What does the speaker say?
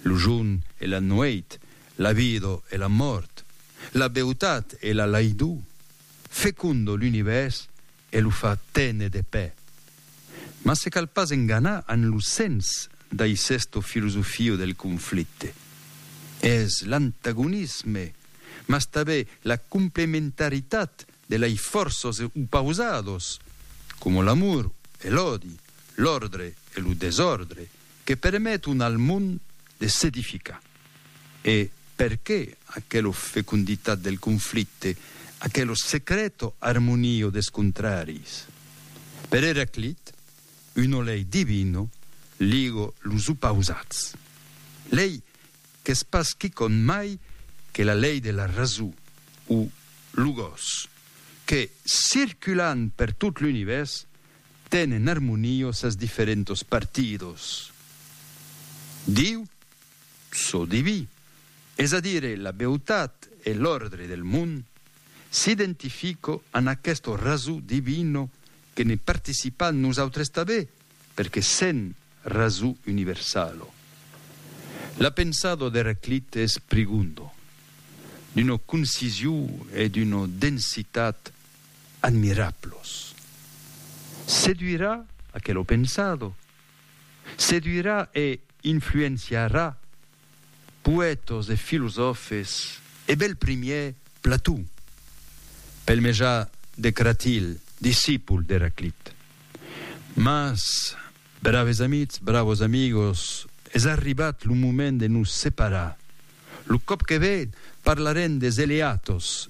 Lo jorn e la nuèit, la vida e la mòrt, la beutat e la laidor, fecondo l'univèrs e lo fa tene de pè. Mas se cal pas enganar amb lo sens d'aisesta filosofia del conflicte. Es l'antagonisme, mas tanben la complementaritat de lei fòrças opausadas, coma l'amor e l'òdi, l'òrdre e lo desòrdre, que permeton al mond de s'edificar, e perqué aquelo feconditat del conflicte, aquelo secreto armonio des contraris? Per Eraclit, uno lei divino ligo los opausats, lei qu'es pas quicòm mai que la lei de la raso, o logos, que, circulant per tot l'univèrs, tenen armonio sas diferentos partidos Diu, çò diví, es a dire la beutat e l'òrdre del mond, s'identifico an aquesto raso divino que ne participan nosautres tabé perque sen raso universalo. La pensado d'Heraclite es prigundo, d'uno concisiu e d'uno densitat admirablos. Seduirà aquelo pensado, seduirà e influenciarà poètos e filosòfes e bel primièr Plató, pel mejar de Cratil, discipul d'Eraclit. Mas, braves amitz, bravos amigos, es arribat lo moment de nos separar. Lo còp que ve parlarem des eleatos